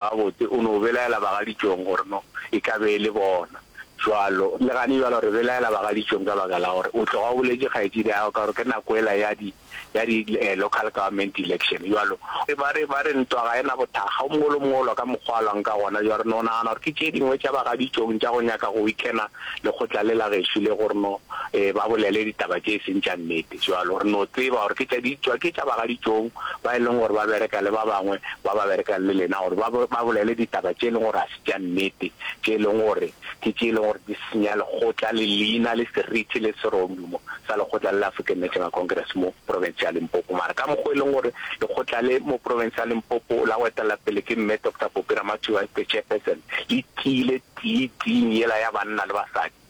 Gabotse, o no belaela bagaditšong gore no e ka be e le bona. Bjalo, le gane bjalo re belaela bagaditšong ka baka la gore o tloga o boletše kgaetšidiago ka gore ke nako yela ya di, ya di local government election. Bjalo, ba re, ba re ntwa ga e na bothakga, o mogolo mogolo ka mokgwa a lwang ka gona. Bjalo, re no nagana gore ke tše dingwe tša bagaditšong tša go nyaka go weakener lekgotla le la gešo le gore no ba bolele ditaba tše e seng tša nnete. Bjalo re no tseba gore ke tša ditšwa, ke tša bagaditšong ba e leng gore ba bereka le ba bangwe ba ba berekang le lena gore ba ba bolele ditaba tše e leng gore ga se tša nnete, tše e leng gore ke tše e leng gore di senya lekgotla le leina le seriti le serodumo sa lekgotla le la African National Congress mo profense ya Limpopo. Mara ka mokgwa e leng gore lekgotla le mo profense ya Limpopo la go etelela pele ke Mme Doctor Poppy Ramathiwa as the chairperson le tiile tiiting yela ya banna le basadi,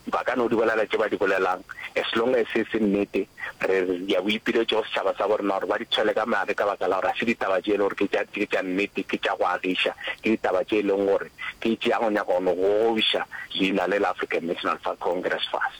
Ba ka no di bolela tše ba di bolelang, as long as e se nnete, re ya boipiletšo go setšhaba sa borena gore ba di tshwele ka madi ka baka la gore ga se ditaba tše e le gore ke tša ke tša nnete, ke tša go agiša, ke ditaba tše e leng gore ke tša go nyaka go no gogobiša leina le la African National fa Congress fase.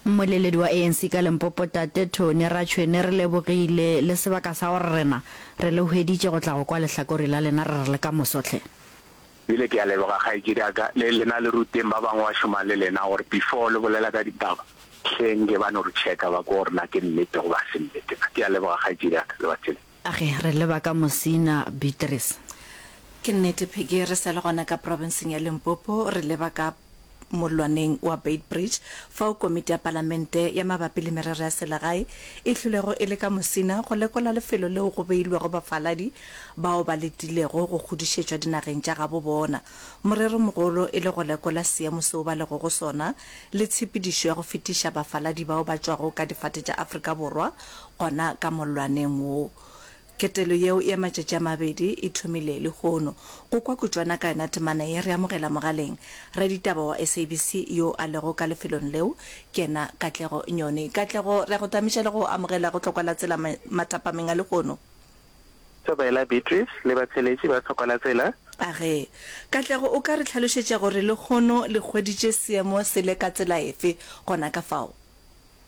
Mmoleledi wa ANC ka Limpopo Tate Tony Ratšhwene re lebogile le sebaka sa gore rena re le hweditše go tla go kwa lehlakori la lena re re le ka moso hle. Bile ke a leboga kgaetšedi ya ka, le lena le ruteng ba bangwe ba šomang le lena gore before le bolela ka ditaba hleng ke ba no re checka ba ko gore na ke nnete goba ga se nnete na. Ke a leboga kgaetšedi ya ka, lebatši le. Age re leba ka Mosina Beatrice. Ke nnete Peggy re sa le gona ka provinceng ya Limpopo re leba ka. mollwaneng wa Beitbridge, fao Komiti ya Palamente ya Mabapi le Merero ya Selegae e hlolego e le ka mosina go lekola lefelo leo go beilwego bafaladi bao ba letilego go kgodišetšwa dinageng tša gabo bona, moreromogolo e le go lekola seemo seo ba lego go sona le tshepedišo ya go fetiša bafaladi bao ba tšwago ka difate tša Afrika Borwa gona ka mollwaneng wo. Ketelo yeo ya matšatši a mabedi e thomile lehono. Go kwa kutšwana ka yona temana ye, re amogela mogaleng raditaba wa SABC yo a lego ka lefelong leo, ke yena Katlego Nyoni. Katlego, re a go tamiša le go amogela go Tlhokwa la Tsela matapameng a lehono. Thobela, Beatrice, le batheeletši ba Tlhokwa la Tsela. A ge. Katlego, o ka re hlalošetša gore lehono le hweditše seemo se le ka tsela efe gona ka fao?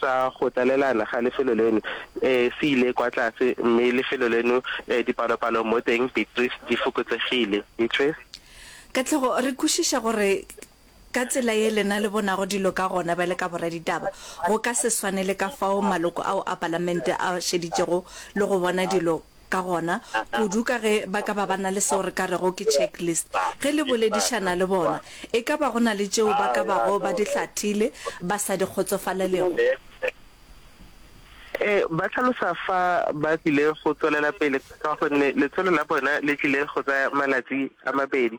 sa go tlalelana ga lefelo leno se ile kwa tlase mme lefelo leno dipalopalo mo teng beatrice di fokotsegile. Beatrice. Katlego, re kwešiša gore ka tsela ye lena le bonago dilo ka gona bjale ka boraditaba, go ka se swane le ka fao maloko ao a palamente a šeditšego le go bona dilo Ka gona, kudu ka ge ba ka ba ba na le seo re ka rego ke checklist, ge le boledišana le bona, e ka ba go na le tšeo ba ka bago ba di hlathile ba sa di kgotsofalelego. Ee, ba hlalosa fa ba tlile go tswelela pele ka gonne letsholo la bona le tlile go tsaya malatsi a mabedi.